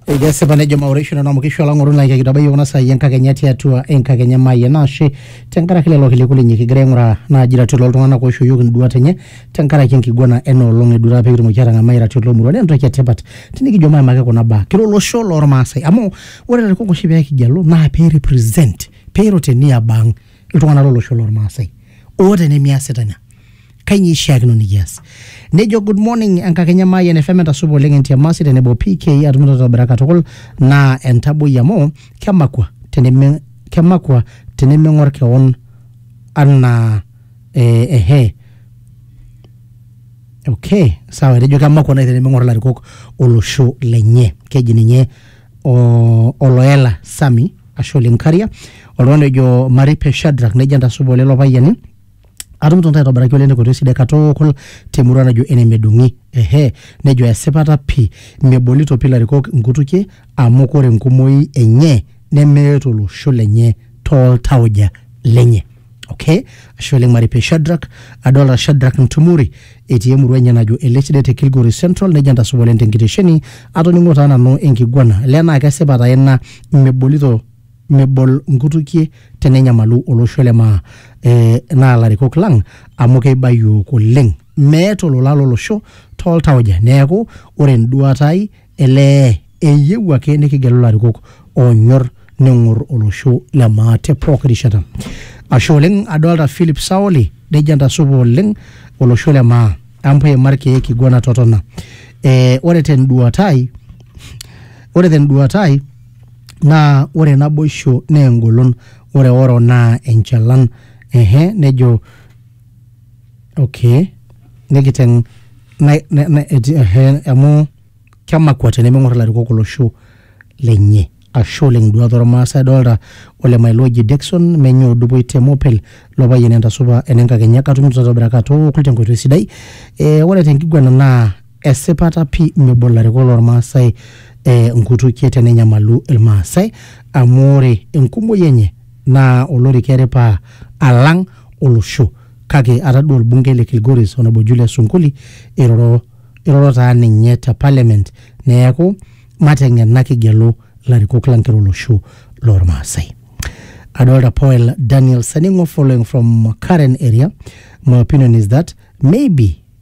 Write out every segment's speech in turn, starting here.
Ekesipa nejo maureisho nanu amu kisho olang'oru naa kitabaiki kuna saai enkakenya tiatua enkakenya maayie naashe tenkaraki lelo kiliku linyi kigira aing'uraa naaji iratiot loltung'anak oishooyioki induat enye tenkaraki enkiguana ena olong eduata pee kitumoki aatang'amai iratiot lomurua naa entoki etipat tinikijo maimaki kuna baa kira olosho lormaasai amu ore ilarikok oshi pee kigellu naa pee represent pee eiro te niaba ang iltung'anak lolosho lormaasai oota enemiasita ina kainyoo eishiakino nikias nejo good morning enkakenya maayian fm entasupa oleng entiamasi tenebo pk atum totobira katukul naa entaboi amu kemakua teneme kemakua tenemeng'or kewon anaa eh, ehe okay sawa etejo kemakua nai tenemeng'or ilarikok olosho lenye keji ninye o- oloela sami ashe oleng karia oltung'ani ojo maripe shadrak nejo entasupa olelo payiani atumito ntae aitobiraki oleng tenkoitoi sidai katukul temurua najo ene medung'i ehe nejo esipata pii mebolito pii ilarikok inkutukie amu kore enkumoi enye nemeeta olosho lenye toltauja lenye okay ashe oleng maripe Shadrack adolta Shadrack Ntumori etii emurua enye najo Elesidet te Kilgoris Central nejo entasupa oleng tenkitesheni atoning'o taa nanu enkiguana le naa kesipa taa ina mebolito mebol nkutukie tenenyamalu olosho le maa eh, naa larikok lang amu keiba yiok oleng meeta olola lolosho tooltauja neeku ore enduata ai elee eyieu ake nikigelu larikok onyor neng'or olosho le maa te pooki rishata ashe oleng adolta philip saoli nejo entasupa oleng olosho le maa ampa eima irkeek kiguana totona eh, ore tenduata ai ore tenduata ai naa ore naboisho naa engolon ore oro naa enchalan ehe nejo okay nikiteng na, na, na, eti- ehe amu kemakua tenemeng'or ilarikok olosho lenye ashe oleng iduat ormaasai adolta ole mailoji Dickson menye odupoi te mopel lo payian entasupa enenkakenya katumito tatobira katookul tenkoitoi sidai eh, ore tenkiguana naa Esipata pii mebo ilarikok loo Ilmaasai inkutukie tenenyamalu Ilmaasai amu ore enkumoi enye naa olorika eripa alang olosho kake atadua olbungei le Kilgoris Honourable Julius Sunkuli eiroro iroro taa ninye te parliament neaku mateng'ena kigelu ilarikok lang kira olosho loo Ilmaasai. Adolita Poel Daniel Saning'o following from Karen area, my opinion is that maybe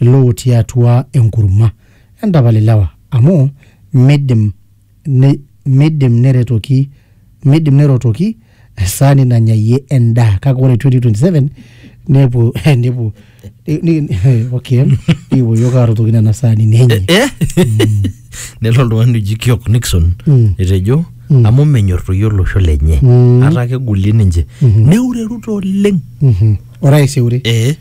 ilootii atua enkurma. Entapal ilewa amu meidim meidim neretoki meidim nerotoki esaani nanyayie endaa kake ore 2027 nepuo nepuo okay nikipuo iyiok arotoki nena saanini enye. Eh? Nelo oltung'ani oji Kiok Nixon Mm. etejo Mm. amu menyor toi olosho lenye Mm. ata kegolie ninche Mhm. neureruta oleng. Mhm. Orais eure. Eh.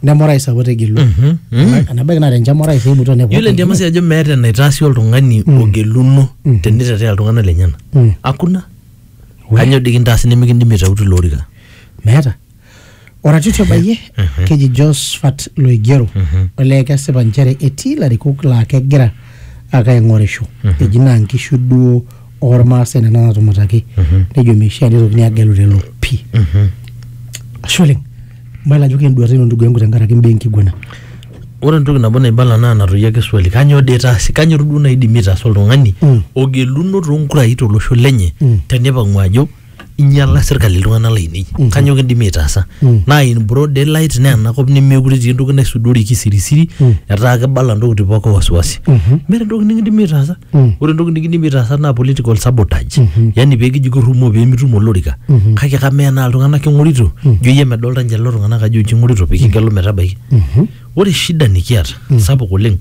neme orais apa otegelua Mhm, mhm. enabaiki naa tenchama orais eibutua nepuo yiolo endiama si ajo meeta enaitaasi oltung'ani ogeluno tenitetea iltung'anak lenyena Mm. hakuna We. kanyoo dii kintaasi nimikindimi aitautu ilo orika meeta oratiti obayie keji josphat loigero olee kesipa nchere etii ilarikok laa kegira ake aing'orisho eji naa nkishu duo ormaasai nena naatumataki nejo meishaa nitokini agelu lelo pii ashe oleng mayiolo ajo kenduata ino ndugu yangu tenkaraki imbaa enkiguana ore entoki nabo naibala naa natoyio ake swali kanyoo dee itaasi kanyoo duo naidimi aitaasa oltung'ani Mm. ogeluno toonkurai tolosho lenye Mm. tenipang'u ajo inyala serkali iltung'anak lainei kanyoo kindimi aitaasa naa in broad daylight naa enakop nemekure etii entoki naisudori kisirisiri etaa kebala ntokitin pooki wasiwasi meeta entoki nikindimi aitaasa ore entoki nikindimi aitaasa naa political sabotage yani peekiji kirrumoo peemitum olorika kake kamaa enaa iltung'anak king'orito ijo iyie medolta ninche lelo tung'anak ajo inche ing'orito pikigelu metabaiki ore shida nikiata sapuk oleng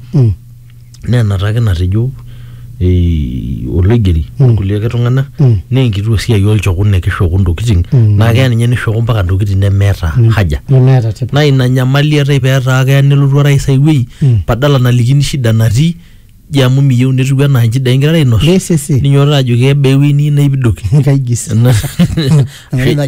naa enata ake natejo eh, oloigeri orkulie ake tung'anak naa enkitua siai olchokun nekishoku ntokitin naa keya ninye nishoku mpaka ntokitin nemeeta haja nemeeta tipat naa ina nyamali eetae peetaa keya nelotu orais ai wuei badala nalikini shida natii ji amu miyieu netiu enaa nchidai ingirara ainos Yes, yes, yes. ninyototo ajoki kebaa ewuei niyieu naipidoki kaigis Ena- Ena najo